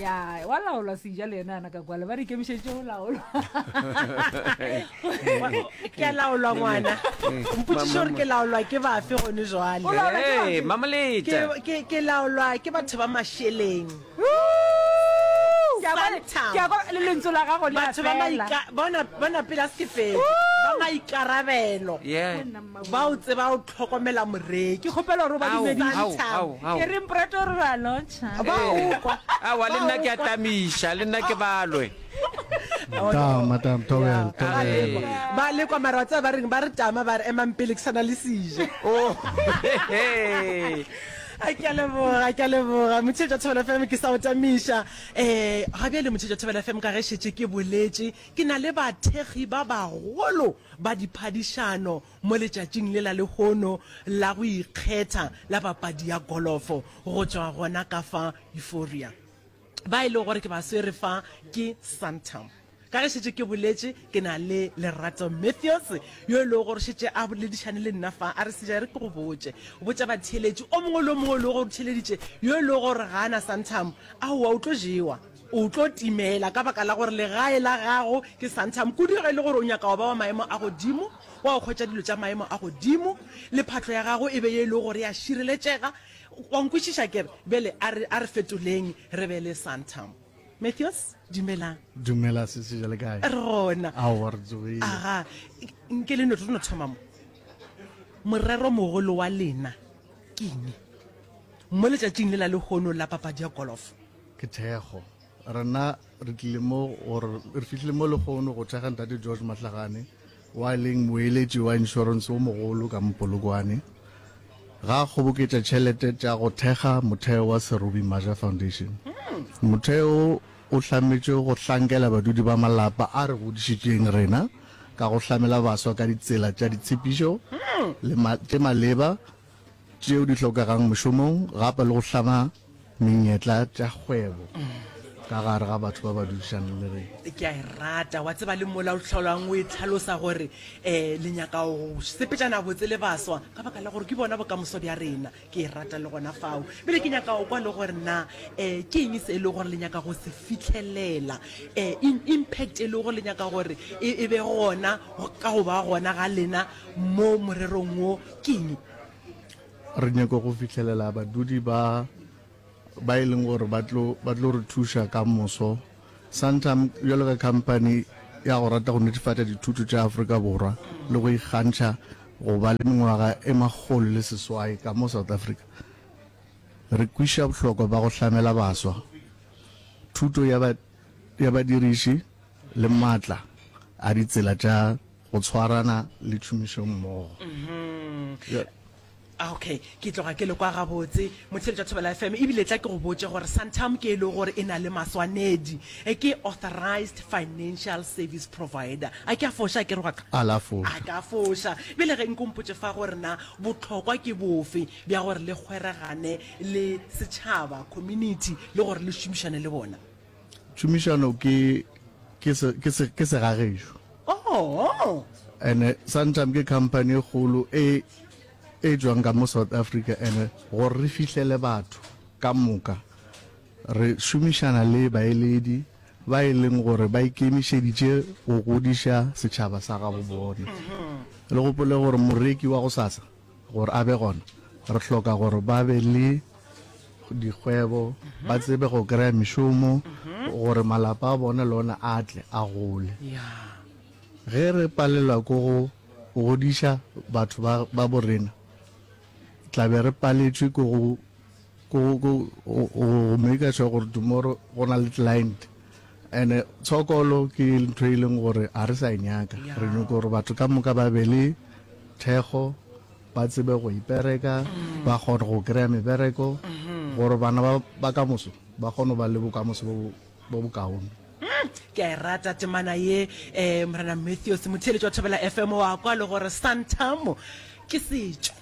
ya wa laolwa seja le ena ana ka kwale ba re ikemišeditše go laolwa ke a laolwa ngwana mpotsiše gore ke laolwa ke bafe gone jwale O laolwa ke bafe? Ee, mamoleta Ke- ke- ke laolwa ke batho ba mašeleng Ke a kwa- Santam. ke a kwa- le lentswe la gago le a batho ba fela. maika- bona bona pela sefedi ba maikarabelo Yeah. ba o tseba o hlokomela moreki ke kgopela gore o ba dumedise ke re mprate re ra lontsha ba ukwa awa le nna ke a tamiša le nna ke balwe madam tobel tobel ba le kwa mara tsa ba reng ba re tama ba re emang pele ke sana le sije oh a ke a leboga ke a leboga motshetša thobela fm ke sa o tamiša um ga bjale motshetša thobela fm ka ge šetše ke boletše ke na le bathekgi ba bagolo ba diphadišano mo letšatšing lela lehono la go ikgetha la papadi ya golofo go tšwa gona ka fa Euphoria ba e le gore ke ba swere fa ke Santam ka ge šetše ke boletše ke na le lerato matthews yo e lego gore šetše a boledišane le nna fa a re seja re ke go botše botša batheeletši o mongwe le o mongwe e lego gore theeleditše yo e lego gore ga a na santam aowa o tlo jewa o tlo timela ka baka la gore legae la gago ke santam kudu ge e le gore o nyaka go ba wa maemo a godimo Wa go hwetša dilo tša maemo a godimo, le phatlo ya gago e be ye e lego gore ya šireletšega. Wa nkwešiša ke re? Bjale a re, a re fetoleng re be le Santam. Mathews, dumelang. Dumela, sisi, bjale kae? Re gona. Aowa, re tsogile. Aga, nke le no, re no thoma mo. Morero mogolo wa lena ke eng mo letšatšing le la lehono la papadi ya golofo? Ke thekgo. Rena re tlile mo gore re fitlhile mo lekgono go thekga ntate George Matlagane wa leng moeletši wa insurance o mogolo ka Mpolokwane ga kgoboketša tšhelete tša go thekga motheo wa Serobi Maja Foundation. Motheo o hlametše go hlankela badudi ba malapa a re godišitšeng rena ka go hlamela baswa ka ditsela tša ditshephišo le tše maleba tšeo di hlokegang mošomong gape le go hlama menyetla tša kgwebo ka gare ga batho ba ba dudišang le re ke a e rata wa tseba le mola o tlholwang o e tlhalosa gore um le nyaka go sepetšana botse le baswa ka baka la gore ke bona bokamoso bja rena ke e rata le gona fao bele ke nyaka go kwa le gore na um ke eng se e le gore le nyaka go se fitlhelela um impact e le gore le nyaka gore e be gona ka go ba gona ga lena mo morerong wo Kini. Re nyaka go fihlelela badudi ba ba e leng gore ba tlo ba tlo re thuša ka moso. Santam bjalo ka company ya go rata go netefatša dithuto tša Afrika Borwa le go ikgantšha go ba le mengwaga e makgolo le seswai ka mo South Africa, re kwišiša bohlokwa ba go hlamela baswa thuto ya ba ya badiriši le maatla a ditsela tša Go tshwarana le tšhomišommogo. Bjale. Okay, ke tloga ke le kwa gabotse motheletši wa Thobela FM e bile tla ke go botše gore Santam ke e lego gore e na le maswanedi, e ke authorized financial service provider. A ke a foša akere wa ka? A la foša. A ka foša. Bjale ge nko mpotše fa gore na bohlokwa ke bofe bja gore le kgweregane le setšhaba, community, le gore le šomišane le bona. Tšhomišano ke ke se ke se ke se gagešu. Oh. Ene Santam ke company e kgolo e e tšwang ka mo South Africa ene gore re fihlele batho ka moka re šomišana le baeledi ba e leng gore ba ikemišeditše go godiša setšhaba sa gabo bona. Le gopole gore moreki wa go sasa Gore a be gona, re hloka gore ba be le dikgwebo, ba tsebe go kry-a mešomo, gore malapa a bone le one a tle a gole. Ge re palelwa ke go godiša batho ba borena, tla be re paletšwe ke go. go go go make sure gore tomorrow go na le client and tshokolo ke ntho e leng gore a re sa e nyaka re nyoko gore batho ka moka ba be le thekgo ba tsebe go ipereka mm. ba kgone go kry-a mebereko mm-hmm. gore bana ba ka moso ba kgone ba le bokamoso bo bokaone ke a e rata temana ye um morena matthews motheletši wa thobela fm wa kwa le gore santamo ke setšo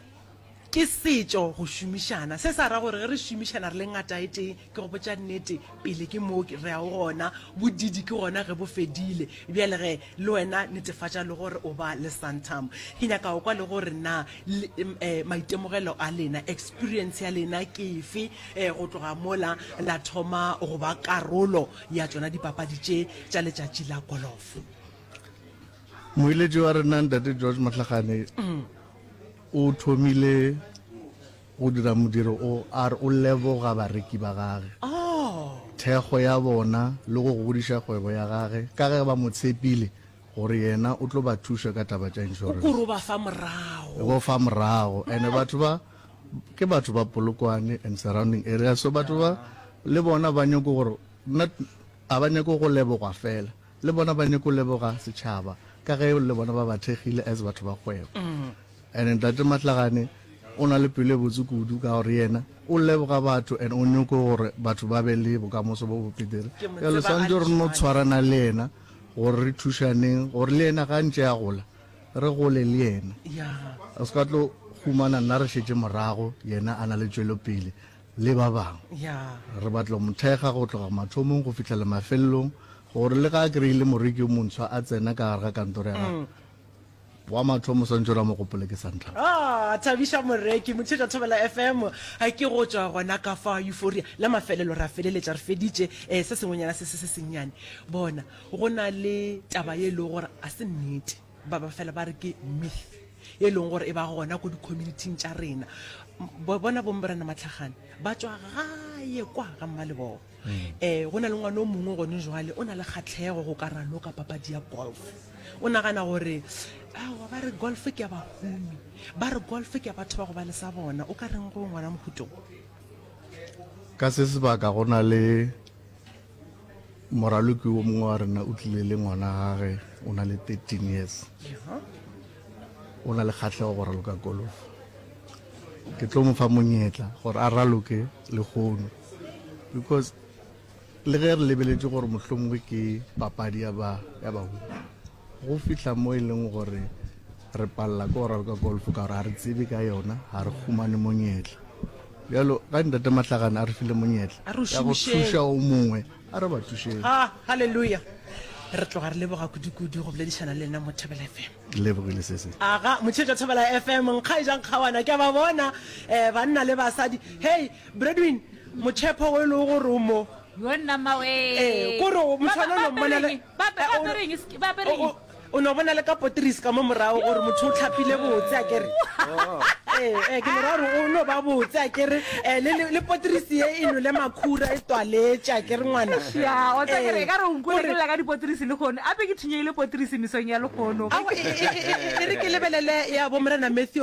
Ke setšo go šomišana. Se sa ra gore ge re šomišana re le ngataetee, ke go botša nnete, pele ke moo re a o gona, bodidi ke gona ge bo fedile. Bjale ge, le wena netefatša le gore o ba le Santam. Ke nyaka go kwa le gore na le, um, maitemogelo a lena, experience ya lena ke efe, um, go tloga mola la thoma go ba karolo ya tšona dipapadi tše tša letšatši la golofo. Moeletši wa rena Ntate George Mohlagane, O thomile go dira modiro o, a re o leboga bareki ba gage, thekgo ya bona le go godiša kgwebo ya gage ka ge ba mo tshepile gore yena o tlo ba thuša ka taba tša insurance. O k'ore o ba fa morago. O ba fa morago and batho ba ke batho ba Polokwane and surrounding areas so batho ba le bona ba nyoko gore not a ba nyako go lebogwa fela. Le bona ba nyeko leboga setšhaba ka ge le bona ba ba thekgile as batho ba kgwebo. And Ntate Matlagane o na le pelo e botse kudu ka gore yena o leboga batho and o nyoko gore batho ba be le bokamoso bo bo petere. Ke mo Jalo tseba swantse re no galetsoane. tshwarana le yena gore re thušaneng gore le yena ga ntše a gola re gole le yena. Ya. O se ka tlo humana nna re šetše morago yena a na le tšwelopele. le ba bangwe. Re batla go mo thekga go tloga mathomong go fihlela mafelelong gore le ga a kry-ile moreki yo montshwa a tsena ka gare ga kantoro ya gagwe wa mathomo o swantse ore a mo gopole ke santlha Ah, thabiša moreki mothetša thobela fm a ke go tšwa gona ka fa euphoria la mafelelo ra feleletša re feditše um se sengwenyana se se se sennyane bona go na le taba ye e lego gore a se nnete ba ba fela ba re ke myth e leng gore e ba gona ko di-communityng tša rena bona bomborena matlhagane ba tswa gaye kwa ga mmalebogo um go na le ngwane o mongwe gone jwale o na le kgatlhego go ka raloka papadi ya golf o nagana gore awa ba re golf ke ya bahumi ba re golf ke ya batho ba go ba le sa bona o ka reng go ngwana mohutong ka se sebaka go na le Moraloki wo mongwe wa rena o tlile le ngwana gage o na le 13 years o na le kgatlhego go raloka golf ke tlo mo fa monyetla gore a raloke le gono because le ge re lebeletse gore mohlomongwe ke papadi ya ba ya baholo go fihla mo e leng gore Re palela ke go raloka golf ka gore ga re tsebe ka yona, ga re humane monyetla. Bjalo ga Ntate Mahlagane a re file monyetla A re o ya go šomišeng. thuša o mongwe, a re ba thušeng. Ha, haleluya. Re tloga re leboga kudu-kudu go boledišana le lena mo Thobela FM. Ke lebogile se se. aga motsheetša thobela fm nkgaejang kgawana ke a ba bona um banna le basadi hei bredwin motšhepho o e lego gore o mo Yo nna mmawe. Ee, ko re o- motho Ba- ba- ona o lo mmona le- bapeleng. Ba be- Eh, ba o- apere eng? Ske- ba apere eng? O- o- o no bona le ka poteris ka mo morago gore motho o tlhapile botse a kere ee ee, ke mora gore o no ba botse a kere um le, le, le poteris ye e nole makhura e twaletse a kere ngwana Ya, o tsa kere, Ee, ka re o nkwele gore- ke lela ka dipotrisi le kgono a be ke thunyegile potrisi mesong ya lekgono Awa, e- e- e- e- e re ke lebelele ya bo morena matthews